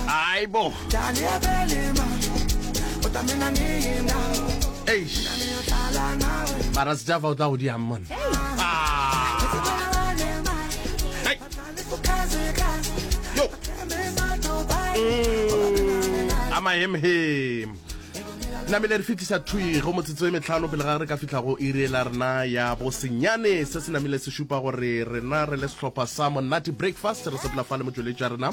aibo mara sejafa o tla go diang mone a mahemhem namele re fitlhisa thwi go motsotso e metlhano pele ga re ka fitlha go iri la rena ya bosenyane se se namile se šupa gore rena re le sehlopha sa monate breakfast re sepela fa le motsweletša rena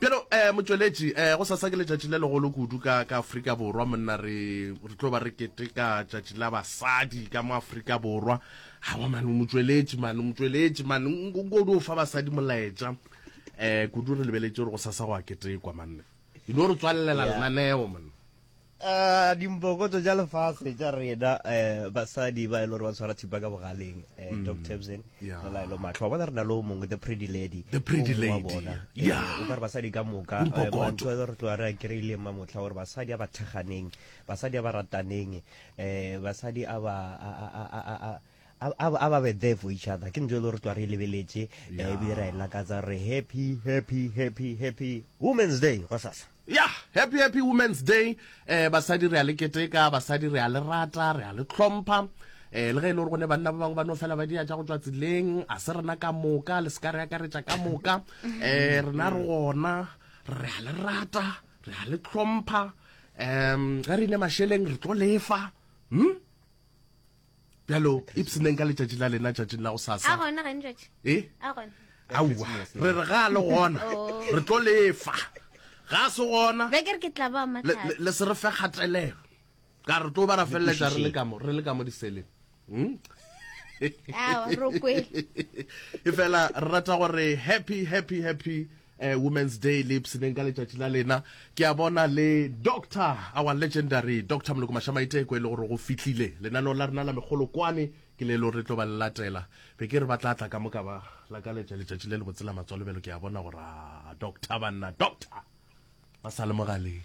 Bjalo, motšweletši, gosasa ke letšatši le legolo kudu ka, ka Afrika Borwa. Monna, re, re tlo ba re keteka tšatši la basadi ka mo Afrika Borwa. Aowa, man, motšweletši, man, motšweletši, man, nko, nko o dio fa basadi molaetša. Kudu re lebeletše gore gosasa go a ketekwa, man. E no re tswalelela lenaneo, man. A dimpokotso tša lefase tša rena basadi ba e le gore ba tshwara thipa ka bogaleng, Doc Tebsen le Laelo Matlho, wa bona re na le o mongwe, the pretty lady, o mongwe wa bona. O ka re basadi ka moka, mantho a re tloga re a kry-ileng ma motlha gore basadi a ba thekganeng, basadi a ba rataneng, basadi a ba a ba be there for each other. Ke ntho e le gore re tloga re e lebeletše ebile ra e lakatsa re happy, happy, happy, happy Women's Day gosasa. Yah happy happy women's day eh basadi re a le keteka basadi re a le rata re a le tlhompha eh le ge e le gore go ne banna ba bangwe ba no fela ba dia tša go tšwa tseleng a se rena ka moka le se ka re akaretša ka moka eh rena re gona re a le rata re a le tlhompha um ge re ile masheleng re tlo lefa hm bjalo ipseneng ka letšatši la lena tšatšing la go sasa e aua re re ga le gona oh. re tlo lefa ga se gona le se re fe kgatelelo ka re tlo ba ra feleletsa re le ka mo diseleng hmm? e fela re rata gore happy happy happy eh, Women's Day le ipshineng ka letšatši la lena ke a bona le Doctor our legendary Doctor Moloko Mashamaiteko e le gore go fihlile lenaneo la rena la megolokwane ke le e le gore re tlo ba le latela be ke re ba tla tla ka moka ba la ka letša letšatši le le botsela matswalobelo ke a bona gore a doctor banna doctor ba sa le mogaleng